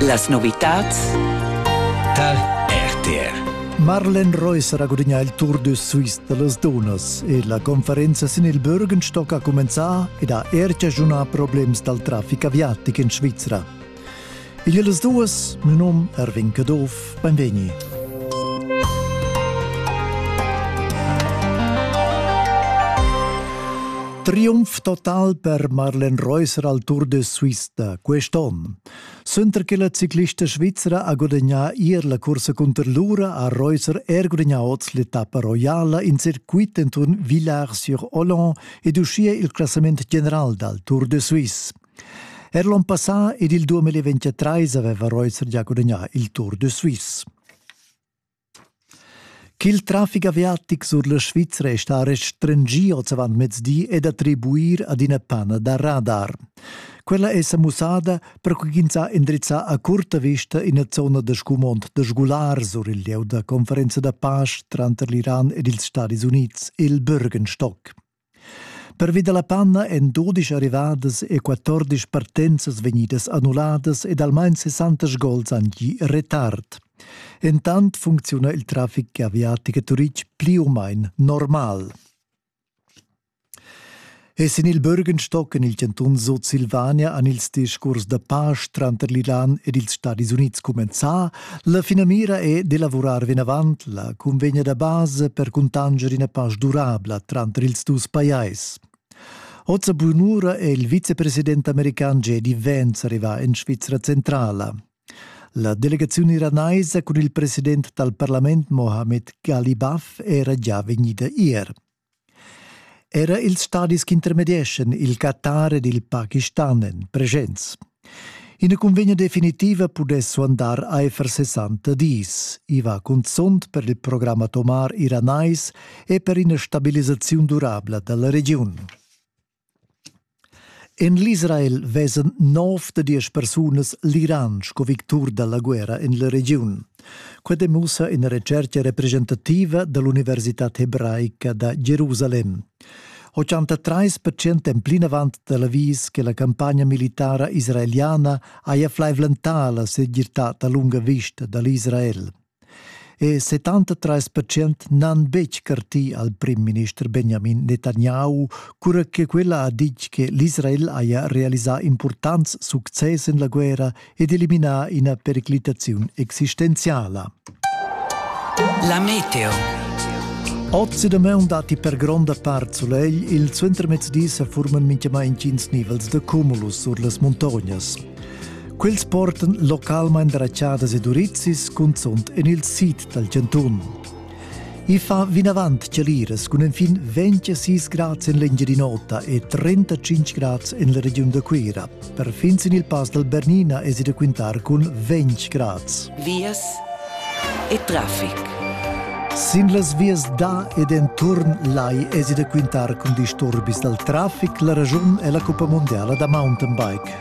Las novitads tar RTR. Marlen Reus ha gudagnà il Tour de Suisse da las dunnas e la conferenza sin il Bürgenstock ha cumenzà ed ha er chaschunà problems dal traffic aviatic en Svizra. Il las duas, mio nom Erwin Caduff, Beinvegni. Triumph total per Marlen Reusser al Tour de Suisse da quest'onn. Suenter che la ciclista svizra ha gudagnà ier la cursa cunter l'ura ha Reusser er gudagnà oz l'etappa roiala in circuit enturn Villars-sur-Olon ed uschia il classament general dal Tour de Suisse. Er l'on passà ed il 2023 aveva Reutzer gia gudagnà il Tour de Suisse. Ch'il traffic aviatic sur la Svizra è stà restringì oz avant mezdi è d'attribuir ad ina pana da radar. Quella è sa mussada per ch'ins ha indrizzà a curta vista ina zona da scumond da sgular sur il lieu da conferenza da pace tranter l'Iran ed ils Stati Unids, il Bürgenstock. Pervi dalla panna èn dudisch arrivadas e quattordisch partenzas vegnidas annulladas ed almain sessantas gols han gì retard. Entant funcziuna il traffic aviatic a Turitg pli u main normal. E sin il Bürgenstock en il cantun Sutsilvania han ils discurs da pace tranter l'Iran ed ils Stadis Unids cumenzà. La finamira è d'elavurar vinavant la cunvegna da base per cuntanger ina pasch durabla tranter ils dus pajais. Oza Bunura è il vicepresident american J.D. Vance arrivà en Svizra centrala. La delegazione iranaisa con il presidente del Parlament Mohamed Ghali Baf era già vegnida ier. Era ils stadis intermedieschan il Qatar ed il Pakistan èn presents. Ina cunvegna definitiva pudess suandar aifer 60 dis. I va cunzunt per il program atomar iranais e per ina stabilisaziun durabla da la regiun. En l'Israel vesan nov da diesch persunas l'Iran sco victur da la guerra en la regiun. Quai demussa ina retschertga representativa da l'Universitad hebraica da Jerusalem. 83 percent èn plinavant tel avis che la campagna militara israeliana haja flaivlentà la segirtad a lunga vista da l'Israel. E 73 percent n'han betg cartì al prim-minister Benjamin Netanyahu, cura che quella ha ditg che l'Israel haja realisà impurtants success en la guerra ed eliminà ina periclitaziun existenziala. La meteo. Oz e damaun datti per gronda part sulegl, il suentermezdi sa furman mintgamai intgins nivels da cumulus sur las muntognas. Quels portan localmain rachadas ed urizis cunzunt en il sid dal chantun. I fa vinavant chaliras cun enfin 26 grads en l'Engiadin'Ota e 35 grads en la regiun da Cuira. Perfin sin il pass dal Bernina è si da quintar cun 20 grads. Vias e traffic. Sin las vias da ed enturn lai esi da quintar cun disturbis dal traffic. La ragiun è la cuppa mondiala da mountainbike.